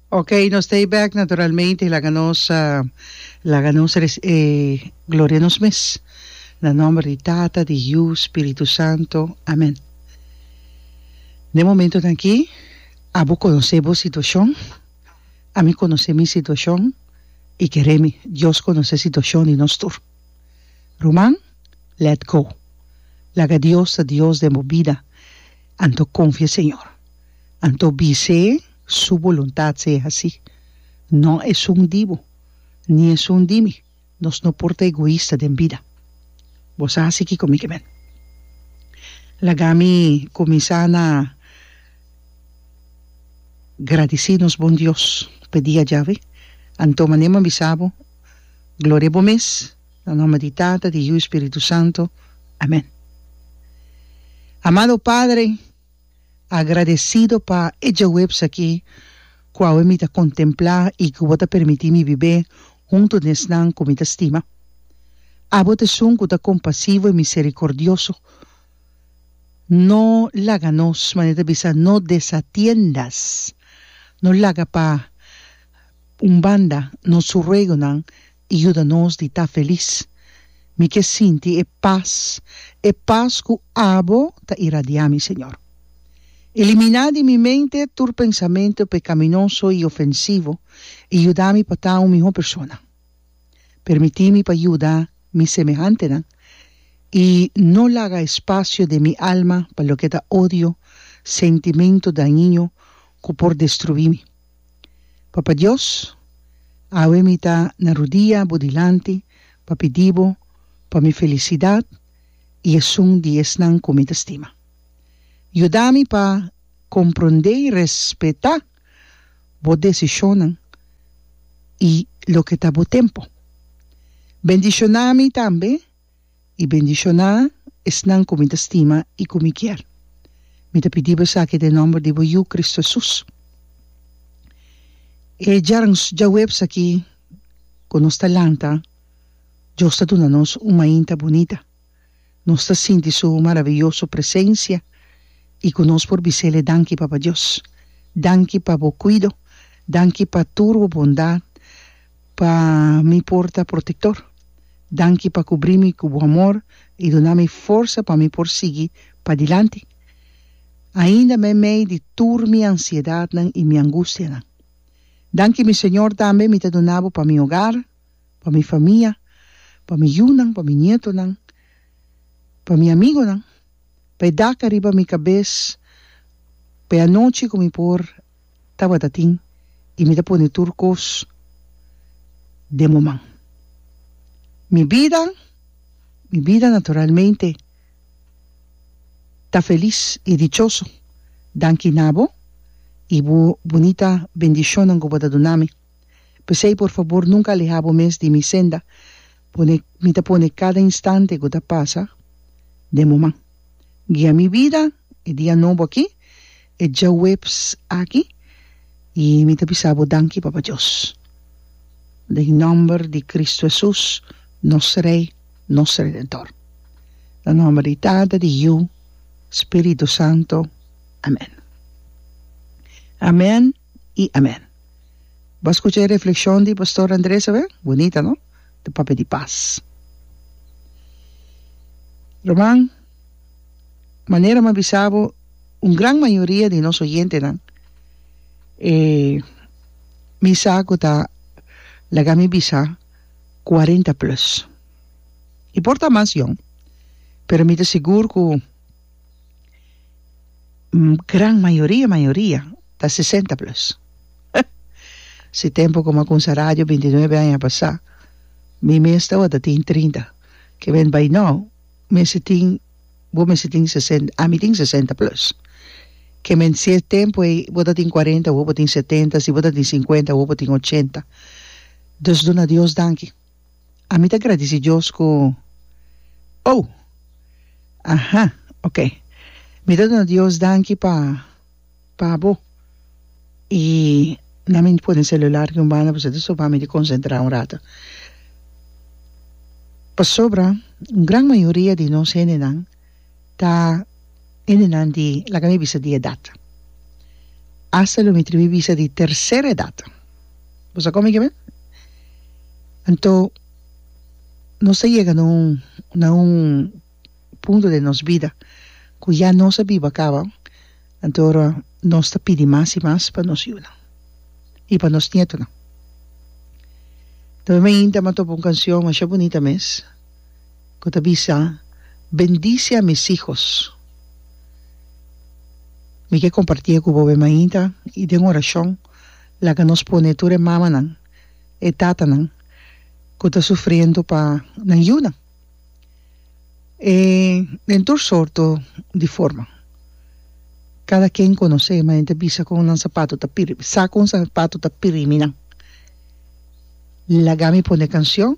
Ok nos ta e back naturalmente laga nos laga nos e gloria nos mes na nomber di tata di yu spiritu santo amen den momentonan aki abo conoce bo situacion ami conoce mi situacion y keremi Dios conoce situacion di nos tur ruman let go laga Dios ta Dios den bo bida anto confia señor. Anto bis'é Su boluntat sey hasí. No esun di bo, ni esun di mi, nos no por ta egoista den bida. Bo sa hasi kiko mi ke ben? Laga mi kuminsá na gradisí nos Bon Dios p'e dia djawe. Anto mané m'an bisa bo, Gloria bo mes, na nòmber di Tata, di Yu i Spiritu Santu. Amèn. Amado Padre, Agradecido pa e djaweps aki cu awe mi ta contempla y cu bo ta permiti mi bibe hunto den esnan cu mi ta stima. Abo ta esun cu ta compasivo y misericordioso. No laga nos, manera ta bisa, no desatiendas, no laga pa un banda nos ruegonan, i yuda nos di ta felis. Mi ke sinti e pas, e pas ku abo ta iradiá mi, Señor. Eliminá di mi mente tur pensamentu pekaminoso i ofensivo i yuda mi pa ta un mihó persona. Permití mi pa yuda mi semehantenan i no laga espasio den mi alma pa loke ta odio, sentimentu dañiño ku por destruí mi. Papa Dios, awe mi ta na rudia bo dilanti pa pidi bo pa mi felisidad y esun di esnan cu mi ta stima. Yuda mi pa compronde y respeta bo decisionnan y loke ta bo tempo. Bendiciona mi tambe. i bendishoná esnan ku mi ta stima i ku mi kier. Mi ta pidi besaki den nòmber di bo Yu, Kristu Hesus. E djarns djaweps aki ku nos ta lanta, Dios ta duna nos un mainta bunita. Nos ta sinti Su maravioso presensia i ku nos por bis'Ele, Danki, Papa Dios. Danki pa Bo kuido. Danki pa tur Bo bondat. Pa mi por ta protektor. Danki pa kubrí mi ku Bo amor i duna mi forsa pa mi por sigui padilanti ainda me mei di tur mi ansiedatnan i mi angustianan. Danki mi Señor tambe mi ta duna Bo pa mi ogar, pa mi famia, pa mi yunan, pa mi nietonan, pa mi amigonan, pa e dak ariba mi kabes, pa e anochi ku mi por tabata tin i mi ta pone tur kos den bo man. Mi bida, mi bida naturalmente ta felis i dichoso danki na bo i bo bunita bendishonnan ku bo ta duna mi. P'esei, por fabor nunka alehá bo mes di mi senda, pone mi ta pone kada instante ku ta pasa den bo man. Guia mi bida e dia nobo aki, e djaweps aki, i mi ta bisa bo danki, Papa Dios. Den nòmber di Kristu Hesus, nos Rei, nos Redentor. Na nòmber di Tata, di Yu, Spiritu Santu. Amèn. Amèn. i amen. Bo a skucha e reflekshon di Pastor Andres awe? Bunita no? Ta papia di pas. Ruman, manera mi a bisa bo un gran mayoria di nos oyentenan e mi sa ku ta laga mi bisa cuarenta plus. I por ta mas yòn, pero mi ta sigur ku. gran mayoria mayoria ta sesenta plus si tempo ku a kumsa radio binti nuebe aña pasá mi mes tabata tin trinta kimen bai nau mester tin bo mester tin sesenta ami tin sesenta plus kimen si e tempo ei bo ta tin kuarenta hopi bo tin setenta si bo ta tin sinkuenta hopi bo tin ochenta dus duna dios danki. Ami ta gradisi Dios ku Oh! Aha, ok. Mi ta duna Dios danki pa pa bo. I na mi pone selular den un banda pasobra ta stopami di konsentrá un ratu. Pasobra un gran mayoria di nos hendenan Ta hendenan di, laga mi bisa di edat. Asta lo mi tribi bisa di tercer edat. Bo sa kon mi ke me? Anto nos ta yega na un na un punto den nos bida ku ya nos a biba kaba, anto ora nos ta pidi mas i mas pa nos yunan i pa nos nietonan. Tambe mi a hinta mi a topa un kanshon masha bunita mes. cu ta bisa, Bendice a mis hijos. Mi ke compartie cu bobe mainta y den oracion laga nos pone tur e mamanan, e tatanan cu ta sufriendo pa nan yuna e den tur sorto di forma. Cada ken conoce ma enta bisa con nan sapato ta piri, sa con sapato ta piri mi nan. Laga mi pone cancion.